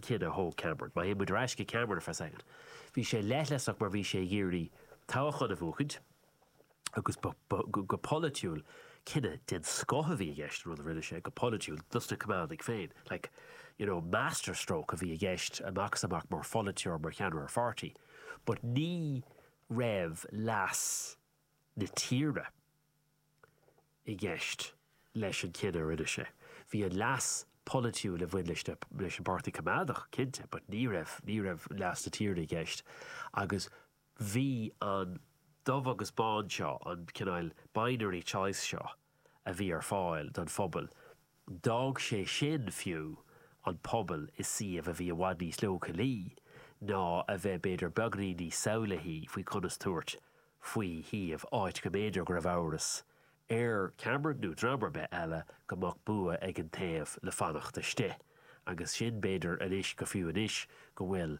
cinneadh a thóg Cameron. Má théann muid ar ais go Cameron ar feadh soicind, bhí sé leithleasach mar bhí sé ag iarraidh toghchán a bhuachaint agus ba, go polaitiúil, cinneadh den scoth a bhí i gceist, an rud a rinne sé, go polaitiúil, dos na Coimeádaigh féin. Like, you know, master stroke a bhí i gceist amach is amach mar pholaiteoir, mar cheannaire pháirtí but ní raibh leas na tíre, i gceist leis an chinneadh a rinne sé. Bhí an leas polaitiúil a bhain leis an bPáirtí Coimeádach, cinnte, but ní raibh, ní raibh leas na tíre i gceist agus bhí an dubh agus bán seo, an cineál binary choice seo a bhí ar fáil don phobal, D'fhág sé sin, fiú, an pobal i suíomh a bhí i bhfad níos leochailí ná a bheith b'fhéidir beagainín níos samhlaithí faoi conas tabhairt faoi shuíomh, áit go mb'fhéidir go raibh amhras ar Cameron, nó dream ar bith eile, go mbeadh bua ag an taobh le fanacht istigh. Agus sin, b'fhéidir, anois, go fiú anois go bhfuil.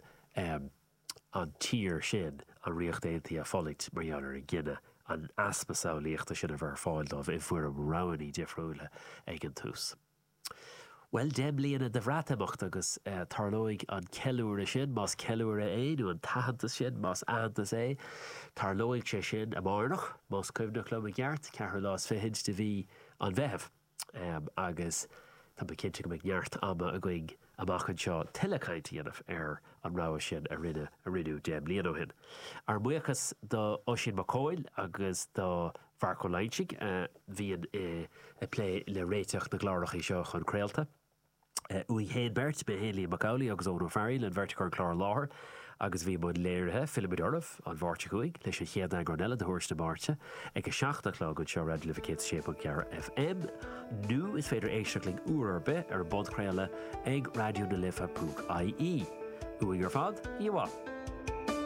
an tír sin, an Ríocht Aontaithe, ag fulaingt mar gheall ar an gcinneadh, an easpa samhlaíochta sin a bheith ar fáil dóibh i bhfoirm roghannaí difriúla ag an tús. Bhuel, deich mbliana de Bhreatimeacht agus tarlóidh an ceiliúradh sin, más ceiliúradh é, nó an t-aitheantas sin, más aitheantas é, tarlóidh sé sin amárach, más cuimhneach liom i gceart, ceathrú lá is fichid de mhí an Mheithimh. agus tá mé cinnte go mbeidh neart ama againn amach anseo tuilleadh caint a dhéanamh ar an rogha sin a rinneadh deich mbliain ó shin. Ár mbuíochas do Oisín Mac Cathmhaoil agus do Mharc Ó Loingsigh a bhíonn ag plé le réiteach na gclárachaí seo chun craolta. uainn féin beirt, mé féin, Liam Mac Amhlaigh agus Eoghan Ó Fearghaíl, an bheirt a chuir an clár i láthair agus a bhí i mbun léirithe. Fillfimid oraibh an Mháirt seo chugainn leis an chéad eagrán eile de Thuairisc na Máirte ag a seacht a' chlog anseo ar Raidió na Life 106.4 FM nó is féidir éisteacht linn uair ar bith ar an bpodchraoladh ag raidionalife.ie. Uainn ar fad, oíche mhaith!